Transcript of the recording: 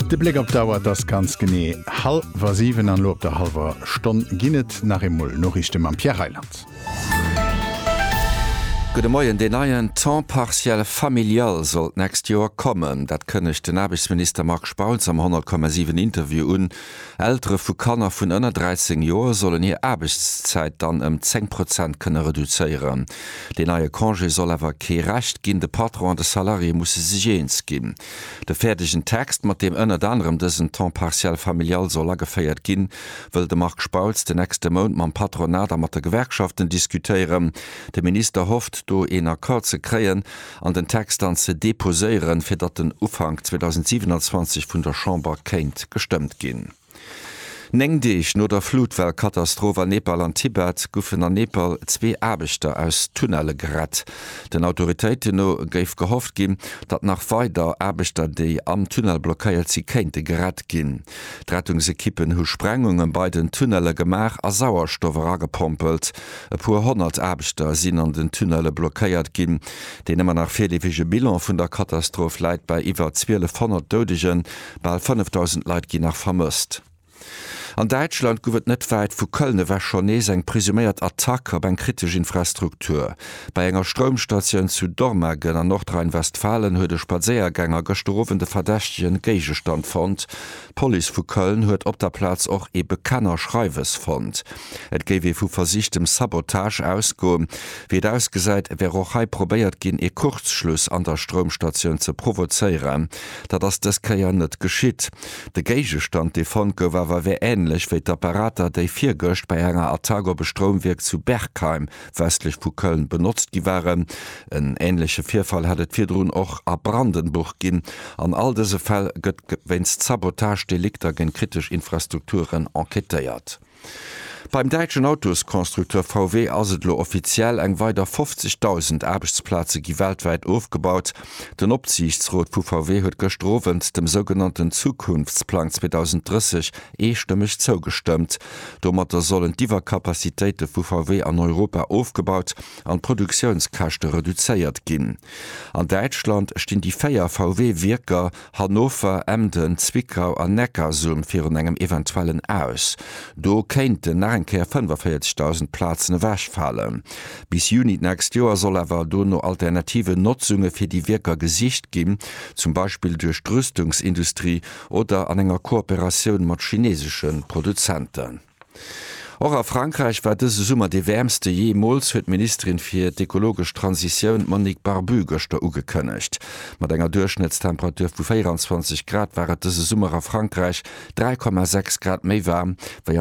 De Bléck op d'Auer, et ass ganz genee hallwer 7 an elo op der hallwer Stonn ginn et nach eemol Noriichte mam Pierre Reyland. Gudde Moien, Deen neien Temps partiel familial soll d'nächst Joer kommen. Dat kënnegt den Aarbechtsminister Marc Spautz am 100,7 Interview un. Eltere vu Kanner vun ënner 13 Joer sollen hir Aarbechtszäit dann ëm 10 Prozent kënne reduzéieren. Deen neie Congé soll awer kee Recht ginn, de Patron an de Salarié musse sech eens ginn. De fäerdegen Text, mat deem ënnert anerem dësen Temps partiel familial soll ageféiert ginn, wëll de Marc Spautz den nächste Mount mam Patronat a mat de Gewerkschaften diskutéieren. De Minister hofft, do een Accord ze kréien an den Text dann ze deposéieren, fir datt en Ufank 2027 vun der Chamber kéint gestëmmt ginn. Néng Deeg no der Flutwell-Katastroph a Nepal an Tibet goufen a Nepal zwee Aarbechter aus Tunnelle gerett. Den Autoritéiten no géif gehofft ginn, datt nach weider Aarbechter, déi am Tunnel blockéiert si kéinte gerett ginn. D'Rettungsekippen hu Sprengungen bei den Tunnelle gemaach a Sauerstoff eragepompelt. E puer honnert Aarbechter sinn an den Tunnelle blockéiert ginn. Deen ëmmer nach virleefege Bilan vun der Katastroph läit bei iwwer 1200 Doudegen. Bal 5.000 Leit ginn nach vermësst. An Däitschland gouf et net wäit vu Köln ewech schonn nees eng presuméiert Attack op eng kritesch Infrastruktur. Bei enger Stroumstatioun zu Dormagen an Nordrhein-Westfalen huet e Spadséiergänger gëschter Owend e verdächtege Géigestand fonnt. D'Police vu Köln huet op der Plaz och ee Bekenner Schreiwes fonnt. Et géif ee vu versichtem Sabotage ausgoen. Wéi et ausgesäit, wär och hei probéiert ginn, ee Kurzschluss an der Stroumstatioun ze provozéieren. Dat ass dës Kéier net geschitt. De Géigestand, dee fonnt gouf, awer wär änlech wéi d'Apparater, déi virgëscht bei enger Attack op e Stroumwierk zu Bergheim, westlech vu Köln, benotzt gi waren. En änleche Virfall hätt et virdrun och a Brandenburg ginn. An all dëse Fäll gëtt wéinst Sabotagedelikter géint kritesch Infrastrukturen enquêtéiert. Beim däitschen Autosconstructeur VW ass et elo offiziell, Eng weider 50.000 Aarbechtsplaze gi weltwäit ofgebaut. Den Opsiichtsrot vu VW huet gëschter Owend dem sougenannten Zukunftsplang 2030 eestëmmeg zougestëmmt. Domatter sollen d'Iwwercapacitéite vu VW an Europa ofgebaut an d'Produktiounskäschte reduzéiert ginn. An Däitschland stinn déi véier VW-Wierker Hannover, Emden, Zwickau an Neckarsulm virun engem eventuellen Aus. Do kéinten nach eng Kéier 45.000 Plazen ewechfalen. Bis Juni d'nächst Joer soll awer do no alternativen Notzunge fir déi Wierker gesicht ginn, zum Beispill duerch d'Rüstungsindustrie oder an enger Kooperatioun mat chineesesche Produzenten. Och a Frankräich war dëse Summer dee wäermste jeemools, huet d'Ministerin fir d'ekologesch Transitioun Monique Barbu gëschter ugekënnegt. Mat enger Duerchschnëttstemperatur vu 24 Grad war et dëse Summer a Frankräich 3,6 Grad méi waarm wéi an